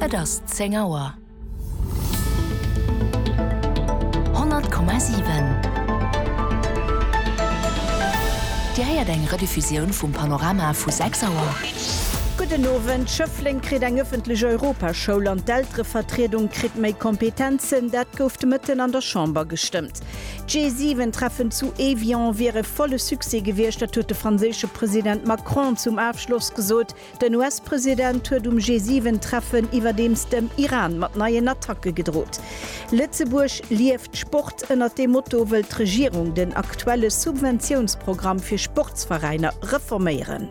Et ass 10 Auer. 100,7 Dir héiert eng Rediffusioun vum Panorama vu 6 Auer. Gudden Owend, Schëffleng kritt eng ëffentlech Europaschoul an d'Elterevertriedung kritt méi Kompetenzen, dat gouf de Mëtten an der Chamber gestëmmt. D'G7-Treffen zu Evian wier e volle Succès gewiescht, dat huet de franséische President Macron zum Afschloss gesot. Den US-President huet um G7-Treffen iwwerdeems dem Iran mat neien Attacke gedrot. Lëtzebuerg lieft Sport, ënnert deem Motto wëll d'Regierung den aktuelle Subventiounsprogramm fir Sportsveräiner reforméieren.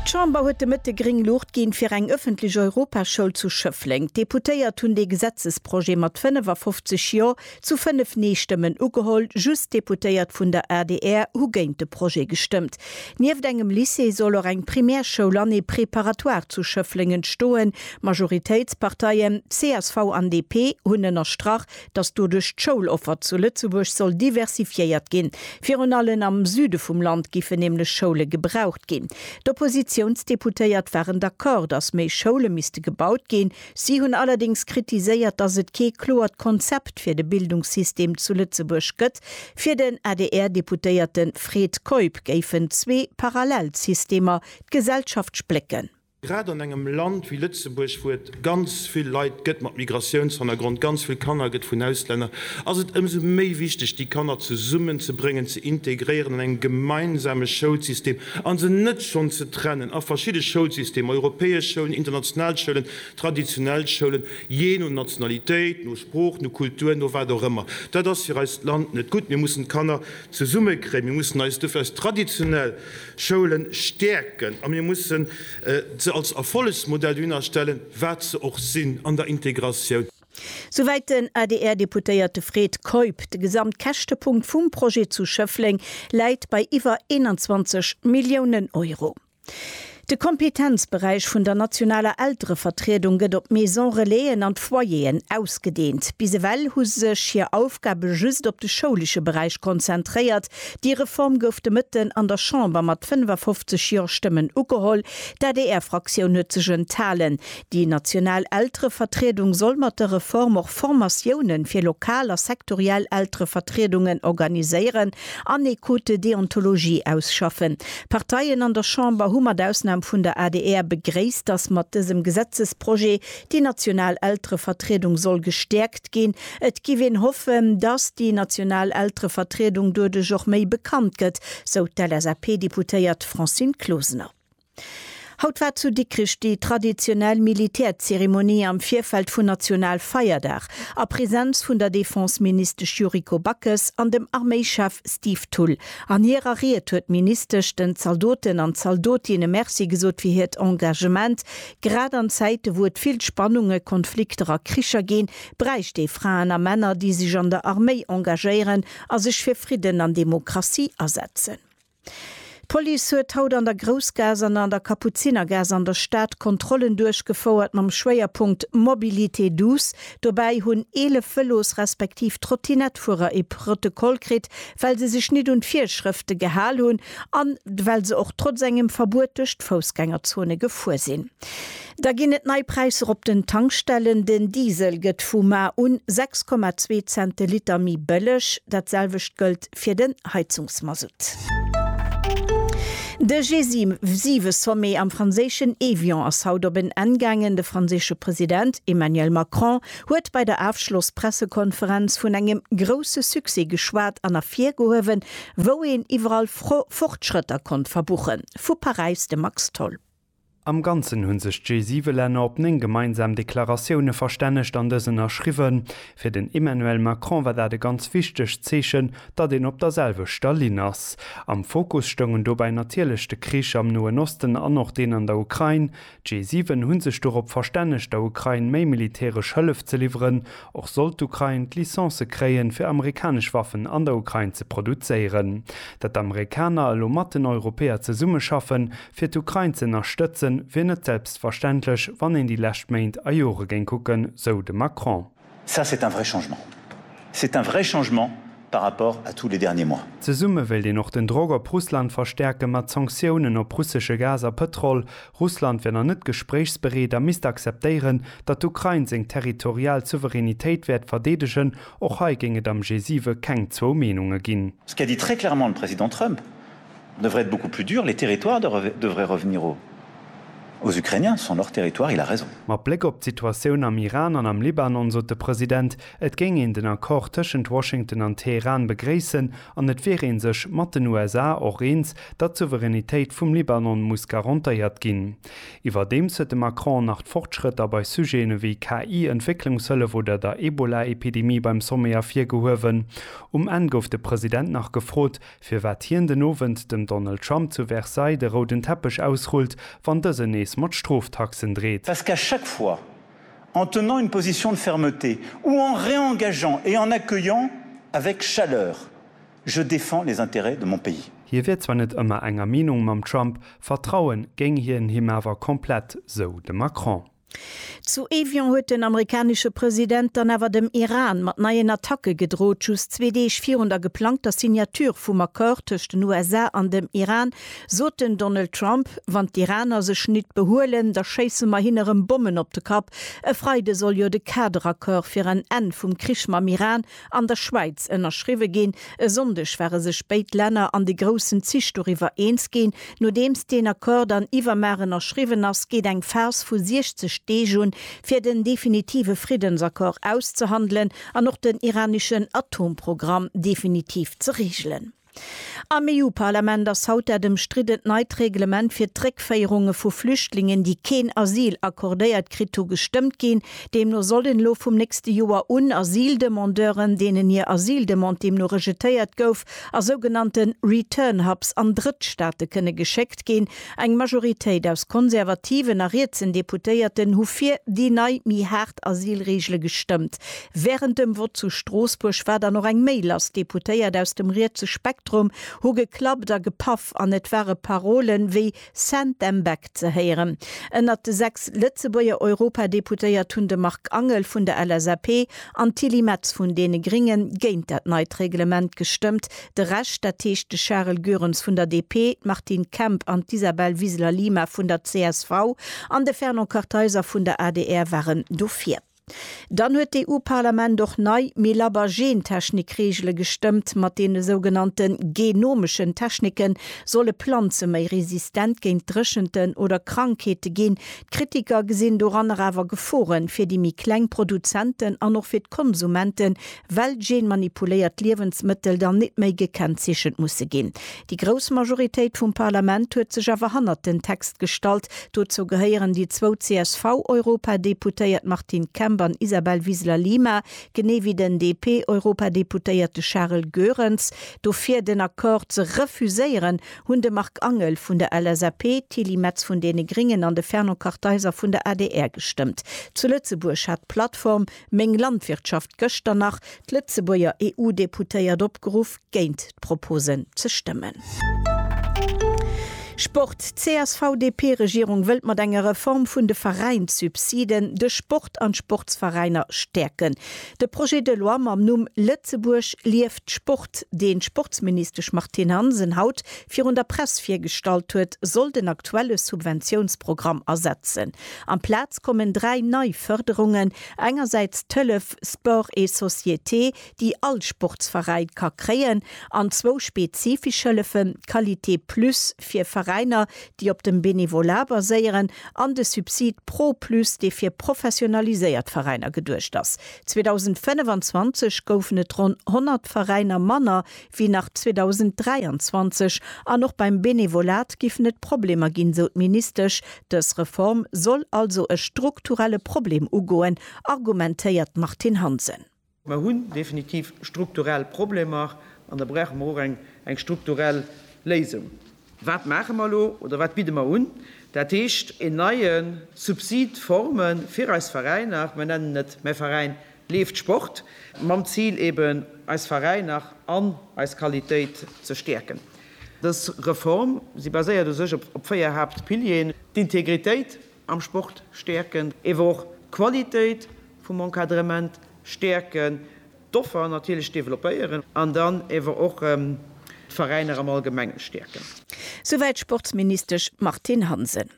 D'Chamber huet de Mëtte gréng Luucht ginn, fir eng ëffentlech Europaschoul zu Schëffleng. D'Deputéiert hunn dee Gesetzesprojet mat 55 Jo! Zu 5 Nee-Stëmmen ugeholl, just d'Deputéiert vun der adr hu géint de Projet gestëmmt. Nieft engem Lycée soll och eng Primärschoul an ee Préparatoire zu Schëffleng entstoen. Majoritéitsparteien, csv an DP, hunn ënnerstrach, datt doduerch d'Schouloffer zu Lëtzebuerg soll diversifiéiert ginn. Virun allen am Süde vum Land giffen nämlech Schoule gebraucht ginn. D'Oppositiounsdeputéiert waren d'Accord, datt méi Schoule misste gebaut ginn. Si hunn allerdéngs kritiséiert, datt et kee kloert Konzept fir de Bildungssystem zu Lëtzebuerg gëtt. Fir den ADR-Deputéierte Fred Keup géifen zwee parallel Systemer d'Gesellschaft splécken. Grad an engem Land wéi Lëtzebuerg, wou et ganz vill Leit gëtt mat Migratiounshannergrond, ganz vill Kanner gëtt vun Auslänner, ass et ëmsou méi wichteg, déi Kanner zesummenzebréngen, ze integréieren an engem gemeinsame Schoulsystem a se net schonn ze trennen a verschidde Schoulsystemer, europäesch Schoulen, international Schoulen, traditionell Schoulen, jee no Nationalitéit, no Sprooch, no Kultur, no wat och ëmmer. Dat ass fir eist Land net gutt. Mir mussen d'Kanner zesummekréien, mir mussen eis dofir eis traditionell Schoule stäerken a mir mussen se als Erfollegsmodell dohinner stellen, wat se och sinn an der Integratioun. Souwäit den ADR-Deputéierte Fred Keup. De Gesamtkäschtepunkt vum Projet zu Schëffleng läit bei iwwer 21 Milliounen Euro. De Kompetenzberäich vun der nationaler Elterevertriedung gëtt op d'Maison-relaisen an d'Foyeren ausgedeent. Bis ewell hu sech hir Aufgabe just op de schoulesche Beräich konzentréiert. Déi Reform gouf de Mëtten an der Chamber mat 55 Jo-Stëmmen ugeholl. D'ADR-Fraktioun huet sech enthalen. Déi national Elterevertriedung soll mat der Reform och Formatiounen fir lokal a sektoriell Elterevertriedungen organiséieren an ee Code de déontologie ausschaffen. D'Parteien an der Chamber hu mat Ausnam vun der adr begréisst, dass mat dësem Gesetzesprojet déi national Elterevertriedung soll gestäerkt ginn. Et giff een hoffen, dass déi national Elterevertriedung doduerch och méi bekannt gëtt, sou d'LSAP-Deputéiert Francine Closener. Haut war zu Dikrich déi traditionell Militärzeremonie am Virfeld vun Nationalfeierdag a Präsenz vun der Defenseministesch Yuriko Backes an dem Arméichef Steve Thull. An hirer Ried huet d'Ministesch den Zaldoten an Zaldotinne Merci gesot fir hiert Engagement. Grad an Zäite wou et vill Spannungen, Konflikter a Kricher ginn, bräicht ee Fraen a Männer, déi sech an der Arméi engagéieren a sech fir Fridden an Demokratie asetzen. D'Police huet haut an der Groussgaass an an der Kapuzinergaass an der Stad Kontrollen duerchgefouert mam Schwéierpunkt Mobilité douce. Dobäi hunn 11 Vëlos respektiv Trottinettefuerer ee Protokoll kritt, well se sech nit un d'Virschrëfte gehal hunn an well se och trotz engem Verbuet duerch d'Foussgängerzone gefuer sinn. Da ginn et nei Präisser op den Tankstellen, Den Diesel gëtt vu mar un 6,2 Cent de Liter méi bëlleg, dat selwecht gëllt. fir den Heizungsmasutt. De G7-Sommet am franséischen Évian ass haut op en Enn gaangen. De franséische President Emmanuel Macron huet bei der Afschloss-Pressekonferenz vun engem grousse Succès geschwat an ervirgehuewen, wou een iwwerall Fortschrëtter konnt verbuchen. Vu Paräis de Max Tholl. Am Ganzen hunn sech d'G7-Länner op 9 gemeinsam Deklaratioune verstännegt an dës ënnerschriwwen. Fir den Emmanuel Macron war dat e ganz wichtegt Zeechen, datt een op der selwechter Linn ass. Am Fokus stoungen dobäi natierlech de Krich am Noen Osten an och deen an der Ukrain. D'G7 hu sech dorop verstännegt, der Ukrain méi militäresch Hëllef ze liwweren. Och sollt d'Ukrain d'Licence kréien, fir amerikanesch Waffen an der Ukrain ze produzéieren. Datt d'Amerikaner elo mat den Europäer zesummeschaffen, Fir d'Ukrain ze ënnerstëtzen, wier net selbstverständlech, wann een déi lescht Méint a Jore géing kucken, sou de Macron. Ça, c'est un vrai changement. C'est un vrai changement par rapport à tous les derniers mois. Zesumme wéilt een och den Drock op Russland verstäerken, mat Sanktiounen op russesche Gas a Pëtrol. Russland wier nach net gespréichsbereet a misst akzeptéieren, datt d'Ukrain seng territorial Souveränitéit wäert verdeedegen. Och hei géing et am G7 keng zwou Meenunge ginn. Ce qu'a dit très clairement le Président Trump, Ça devrait être beaucoup plus dur, les territoires devraient revenir aux Ukrainiens, ce sont leurs territoires, il a raison. Mat Bléck op d'Situatioun am Iran an am Libanon sot de President, et géing een den Accord tëschent Washington an Teheran begréissen an et wier ee sech mat den USA och eens, datt d'Souveränitéit vum Libanon muss garantéiert ginn. Iwwerdeems huet de Macron nach d'Fortschrëtter bei Sujeten ewéi KI, Entwécklungshëllef oder der Ebola-Epidemie beim Sommet ervirgehuewen. Um Enn gouf de President nach gefrot, firwat hien den Owend dem Donald Trump zu Versailles de rouden Teppech ausrullt, wann dësen nees mat Stroftaxen dreet. Parce qu'à chaque fois, en tenant une position de fermeté ou en réengageant et en accueillant avec chaleur, je défends les intérêts de mon pays. Hie wier zwar net ëmmer enger Meenung mam Trump, vertrauen géing hien him awer komplett, sou de Macron. Zu Evian huet den amerikanesche President dann awer dem Iran mat neien Attacke gedrot, just zwee Deeg virun der geplangter Signature vum Accord tëscht den USA an dem Iran sot den Donald Trump, Wann d'Iraner sech nit behuelen, da schéisse mer hinne rëm Bommen op de Kapp. E Freide soll jo de Kaderaccord fir en Enn vum Krich mam Iran an der Schwäiz ënnerschriwwe ginn. E Sonndeg ware sech béid Länner an de groussen Zich doriwwer eens ginn. Nodeems deen Accord dann iwwermar ënnerschriwwen ass, geet eng Phas vu 60 Deeg un, fir den definitive Friddensaccord auszehandelen an och den iraneschen Atomprogramm definitiv ze reegelen. Am EU-Parlament ass haut dat ëmstriddent neit Reglement fir d'Réckféierunge vu Flüchtlingen, déi keen Asyl accordéiert kritt hu, gestëmmt ginn. Deemno sollen elo vum nächste Joer un Asyldemandeuren, deenen hir Asyldemande deemno rejetéiert gouf, a sougenannte Return-Hubs an Drëttstaate kënne geschéckt ginn, Eng Majoritéit aus konservativen a rietsen Deputéierten hu fir déi nei, méi haart Asylreegele gestëmmt. Wärend dem Vott zu Stroossbuerg war dann och eng méi lass. Deputéiert aus dem rietse Spektrum hu geklappt a gepaff an et ware Parole wéi Send them back ze héieren. Ënnert de sechs Lëtzebuerger Europadeputéiert hunn de Marc Angel vun der LSAP an d'Tilly Metz vun deene Gringe géint dat neit Reglement gestëmmt, De Rescht, dat heescht de Charel Goerens vun der DP, d'Martine Kemp an d'Isabel Wiseler-Lima vun der csv an de Fernand Kartheiser vun der adr waren dofir. Dann huet d'EU-Parlament och nei, méi labber Gentechnik-Reegele gestëmmt. Mat deene sougenannte genomeschen Technike solle Planze méi resistent géint Dréchenten oder Krankheete ginn. D'Kritiker gesinn doranner awer Gefore fir déi méi kleng Produzenten an och fir d'Konsumente well genmanipuléiert Liewensmëttel dann nit méi gekennzeechent musse ginn. Déi grouss Majoritéit vum Parlament huet sech awer hannert den Text gestallt. Dozou gehéieren déi zwou CSV-Europadeputéiert Martine Kemp an Isabel Wiseler-Lima, genee wéi den DP-Europadeputéierte Charel Goerens. Dofir den Accord ze refuséieren, hunn de Marc Angel vun der LSAP, d'Tilly Metz vun deene Gringen an de Fernand Kartheiser vun der adr gestëmmt. Zu Lëtzebuerg hat d'Plattform Meng Landwirtschaft gëschter nach d'Lëtzebuerger EU-Deputéiert opgeruff, géint d'Proposen ze stëmmen. Sport, D'CSV-DP-Regierung wëllt mat enger Reform vun de Veräinssubsiden de Sport an d'Sportsveräiner stäerken. De Projet de loi mam Numm Lëtzebuerg lieft Sport, deen d'Sportsministesch Martine Hansen haut virun der Press virgestallt huet, soll den aktuelle Subventiounsprogramm ersetzen. Amplaz kommen dräi nei Fërderungen, engersäits d'Hëllef Sport et Société, déi all Sportsveräin ka kréien, an zwou spezifesch Hëllefen, d'Qualité Plus fir Veräiner, déi op dem Benevolat baséieren, an de Subsid Pro Plus, dee fir professionaliséiert Veräiner geduecht ass. 2025 goufen et ronn 100 Veräiner manner wéi nach 2023 an och beim Benevolat giffen et Problemer ginn, sou d'Ministesch. Dës Reform soll also e strukturelle Problem ugoen, argumentéiert d'Martine Hansen. Mer hunn definitiv strukturell Problemer an da brauche mer och eng strukturell Léisung. Wat maache mer elo oder wat bidde mer un? Dat heescht een neie Subsid, Forme fir eis Veräiner, mer nennen et Mäi Veräin leeft Sport, mam Zil eben eis Veräiner an eis Qualitéit ze stäerken. Dës Reform, si baséiert u sech op véier Haaptpilieren, d'Integritéit am Sport stäerken, ewer och d'Qualitéit vum Encadrement stäerken, d'Offer natierlech developpéieren an dann ewer och d'Veräiner am Allgemenge stäerken. Souwäit d'Sportsministesch Martine Hansen.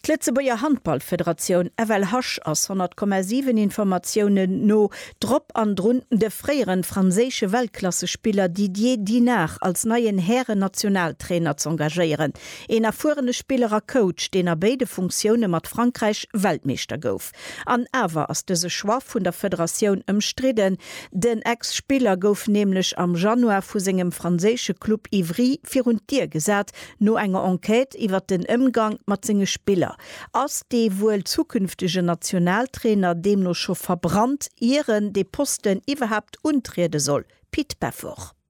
D'Lëtzebuerger Handballfederatioun, FLHasch, ass 100,7 Informatiounen no drop an drun, de fréieren franséische Weltklassespiller Didier Dinard als neien Hären-Nationaltrainer z'engagéieren. Een erfuerene Spiller a Coach, deen a béide Funktioune mat Frankräich Weltmeeschter gouf. An awer ass dëse Choix vun der Federatioun ëmstridden. Den Ex-Spiller gouf nämlech am Januar vu sengem franséische Club Ivry virun d'Dier gesat, no enger Enquête iwwer den Ëmgang mat senge Spiller. Ass dee wuel zukünftegen Nationaltrainer deemno scho verbrannt, ier en dee Posten iwwerhaapt untriede soll? Pit Pefforch.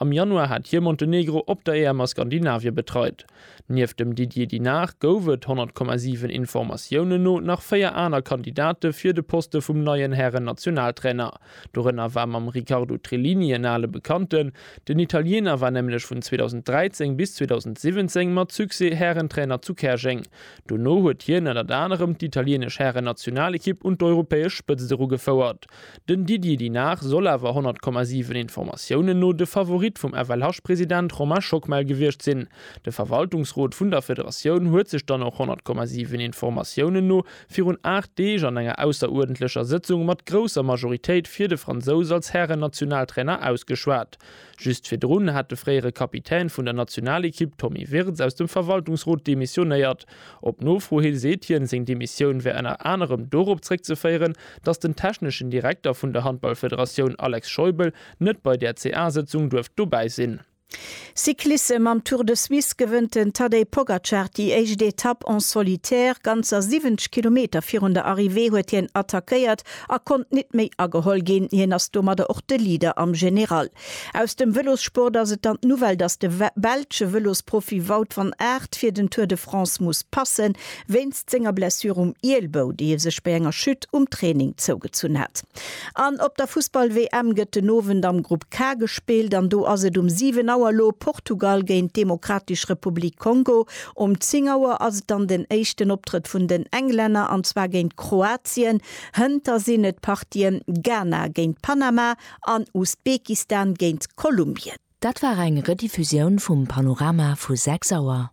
Am Januar hat hie Montenegro op der EM a Skandinavie betreit. Nieft dem Didier Dinard gouf et, 100,7 Informatiounen no, nach véier aner Kandidate fir de Poste vum neien Hären-Nationaltrainer. Dorënner war mam Riccardo Trillini en ale Bekannten. Den Italiener war nämlech vun 2013 bis 2017 mat Succès Härentrainer zu Käerjeng. Dono huet hien ënnert anerem d'italieenesch Hären-Nationalekipp un d'europäesch Spëtzt erugefouert. Den Didier Dinard soll awer 100,7 Informatiounen no de Favorit vum FLH-President Romain Schockmel gewiescht sinn. De Verwaltungsrot vun der Federatioun huet sech dann och 100,7 Informatiounen no virun 8 Deeg an enger ausseruerdentlecher Sëtzung mat grousser Majoritéit fir de Fransous als Hären-Nationaltrainer ausgeschwat. Just virdrun hat de fréiere Kapitän vun der Nationalekipp Tommy Wirtz aus dem Verwaltungsrot demissionéiert. Op Nofro hi seet hien, seng Demissioun wär ënner anerem dorop zréckzeféieren, datt den techneschen Direkter vun der Handballfederatioun Alex Scheubel net bei där CA-Sëtzung duerft dobäi sinn. Cyclissem Am Tour de Suisse gewënnt den Tadej Pogacar déi éischt Etapp en solitaire. Ganzer 70 Kilometer virun der Arrivée huet hien attackéiert a konnt nit méi ageholl ginn. Hien ass domadder och de Leader am General. Aus dem Vëlossport ass et dann d'Nouvelle, datt de belsche Vëlosprofi Wout van Aert fir den Tour de France muss passen, wéinst senger Blessure um Ielbou, déi e sech bei enger Chute um Training zougezunn hat. An op der Fussball-WM gëtt den Owend am Grupp K gespillt an do ass et um 7 Auer elo Portugal géint d'Demokratisch Republik Kongo Um 10 Auer ass et dann den éischten Optrëtt vun den Englänner, an zwar géint Kroatien. Hënter sinn et d'Partien Ghana géint Panama an Usbekistan géint Kolumbien. Dat war eng Rediffusioun vum Panorama vu 6 Auer.